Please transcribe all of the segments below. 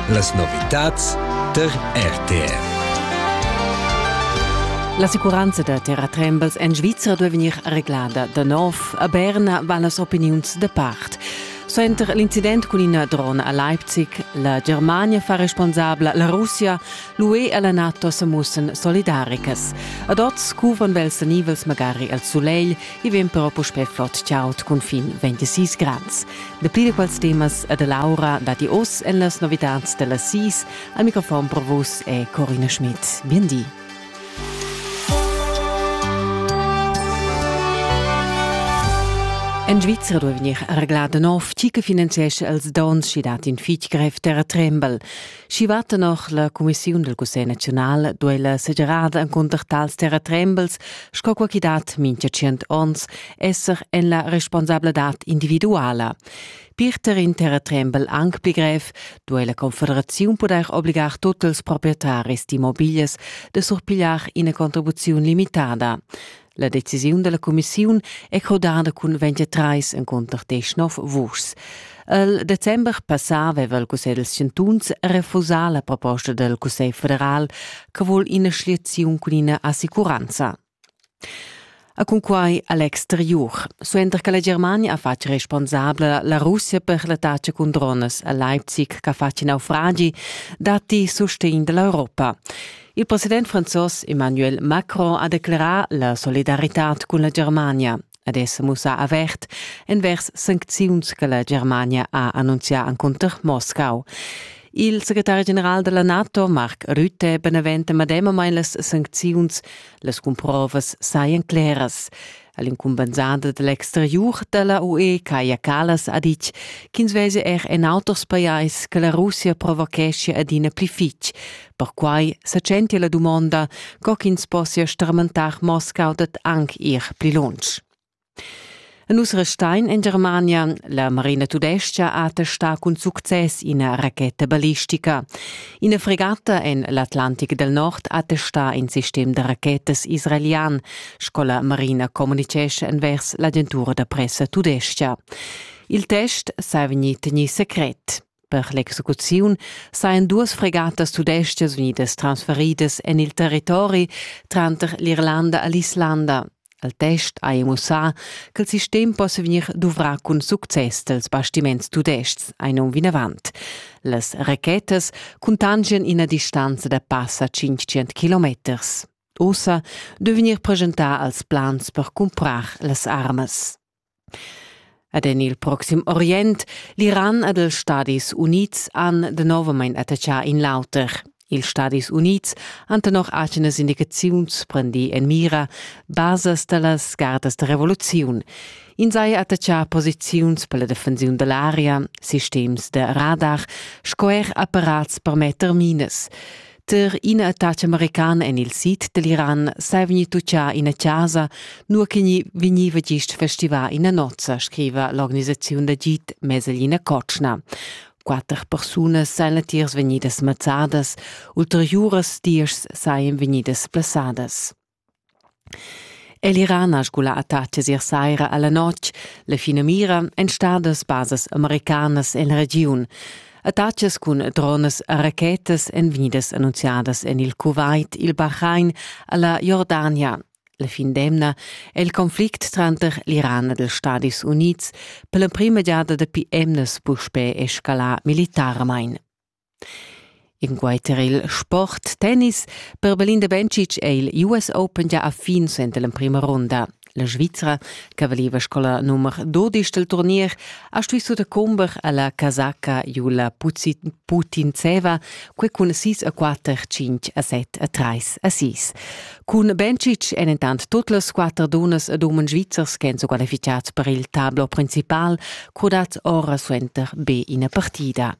Las novitads tar RTR. L'assicuranza da terratrembels en Svizra duai vegnir reglada da nov. A Berna van las opiniuns da part. Suenter l'incident cun ina drona a Leipzig, la Germania fa responsabla, la Russia, l'UE e la NATO sa mussan solidaricas. Ad oz cuvan vels nivels magari al sulegl I vegn però puspè flot chaud cun fin 26 grads. Dapli da quels temas e da Laura datti oz en las novitads da las 6. Al microfon pro vus è Corina Schmidt. Bien di. En Svizra duai vegnir reglà da nov, tgi che finanziescha els dons sch'i dat in fitg grev terratrembel. Schi va tenor la cumissiun del Cussegl naziunal duella segerada encunter tals terratrembels, sco quo chi dat mincha tschient ons, esser en la responsabladad individuala. Pirter in terratrembel anc pli grev duei la Confederaziun pudair obligar tutt ils proprietaris d'immobilias de surpigliar ina contribuziun limitada. La decisiun dalla cumissiun è codada cun 23 encunter desch nov vuschs. Il december passà aveva il Cussegl dels Chantuns refusà la proposta del Cussegl federal che vuol ina schliaziun cun ina assicuranza. A cunquai a l'exterior. Suenter che la Germania ha fatg responsabla la Russia per l'attacca cun drones a Leipzig che fa naufragi, datti sustegn dall'Europa. Il president franzos Emmanuel Macron ha declerà la solidaritad cun la Germania ed è sa mussà avert envers sancziuns che la Germania ha annunzià encunter Moscau. Il secretari general della NATO, Mark Rutte, beneventa medemamain las sancziuns. Las cumprovas sajan claras. All'incumbensader dall'exteriur dalla UE Kaja Kallas ha ditg ch'ins vesi er en auters pajais che la Russia provocheschia adina pli fitg. Perquai sa tschentia la dumonda, co ch'ins possia stramentar Moscau dad anc ir pli lunsch. A nus restein en Germania. La Marina Tudescha ha testà cun success ina racheta ballistica. Ina fregata en l'Atlantic del Nord ha testà in sistem da rachetas israelian. sco la Marina communitgescha envers l'agentura da pressa tudestga. Il test sa vegnì tegnì secret. Per l'execuziun sajan duas fregatas tudestgas unidas transferidas en il territori tranter l'Irlanda e l'Islanda. Al test ha mussà che il sistem possa vegnir duvrà cun success dels bastiments tudestgs ein um vinavant. Las rachetas cuntangian ina distanza da passa 500 kilometers. ussa devegnir preschentà als plans per cumprar las armas. Ed en il proxim Orient, l'Iran ed els Stadis Unids han novamain attachà in l'auter. Ils Stadis Unids han tenor atgenas indicaziuns prendì en mira basas da las gardas da revoluziun. In sai attachà posiziuns per la defensiun da l'aria, sistems da radar sco er apparats per metter minas. Ter ina attacca americana en il sid dell'Iran sei vegni tuccià ina casa, nur che vegniva gist festivà ina nozza, scriva l'organisaziun da git Meselina Kotschna. Quatter persunas seien latiers vegnidas mazzadas, ulteriuras diesch seien vegnidas plaçadas. El Iran ha sgulà attacas ier saira a la notg. La finamira èn stadas basas americanas en la regiun. Attacas cun dronas e rachetas èn vegnidas annunziadas en il Kuwait, il Bahrain e la Jordania. La fin d'emna è il conflict tranter l'Iran ed ils Stadis Unids per l'emprima giada dapi emnas puspè escalà militarmain. Inquai tar il sport tennis per Belinda Bencic è il US Open gia a fin suenter l'emprima runda. La Svizra, che valiva sco la nummer 12 del turnier, ha stuì sutacumber alla casacca Jula Putintseva, quei cun 6 a 4, 5 a 7 a 3 a 6. Cun Bencic èn intant tut las quatter dunas ed umens svizzers che sono qualificati per il tablo principal, crodat ora suenter be ina partida.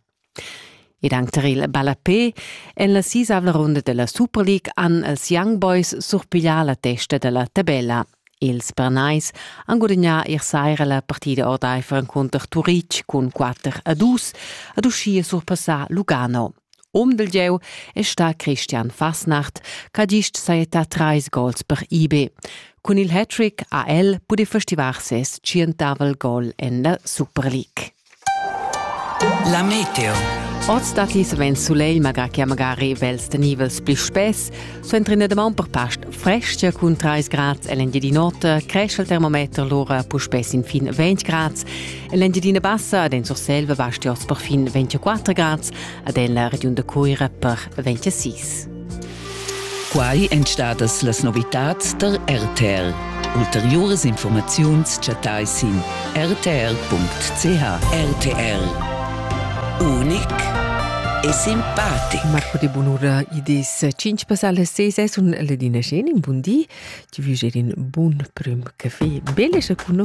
Ed anc tar il ballapè en la sisavla runda della Super League han els Young Boys surpiglià la testa dalla tabella. Ils Bernais han gudagnà ier saira la partida ordaifer encunter Turitg cun 4 a 2 ad uschia surpassà Lugano. Um del gieu è sta Christian Fasnacht, ch'ha gist sajettà trais gols per IB. Cun il hat-trick ha el pudì festivar ses tschientavel gol en la Super League. La meteo. Oz datti savens sulegl, malgrà che magari vels tenivels pli spess. Suenter ina damaun per past frestgia cun 3 grads l'Engiadin'Ota, cresce il termometer lura puspè sin fin 20 grads. En l'Engiadina Bassa ad en Surselva basti oz per fin 24 grads, ad en la regiun da Cuira per 26. Quai èn stadas las novitads tar RTL. Ulteriuras informaziuns chattai sin rtl.ch. RTL. Unic e simpatic. Marco de Bunura idis 5 passale 6 e sun Ledina Schenin, bun di. Ti vulerin bun prim caffè. Belle și cu nu?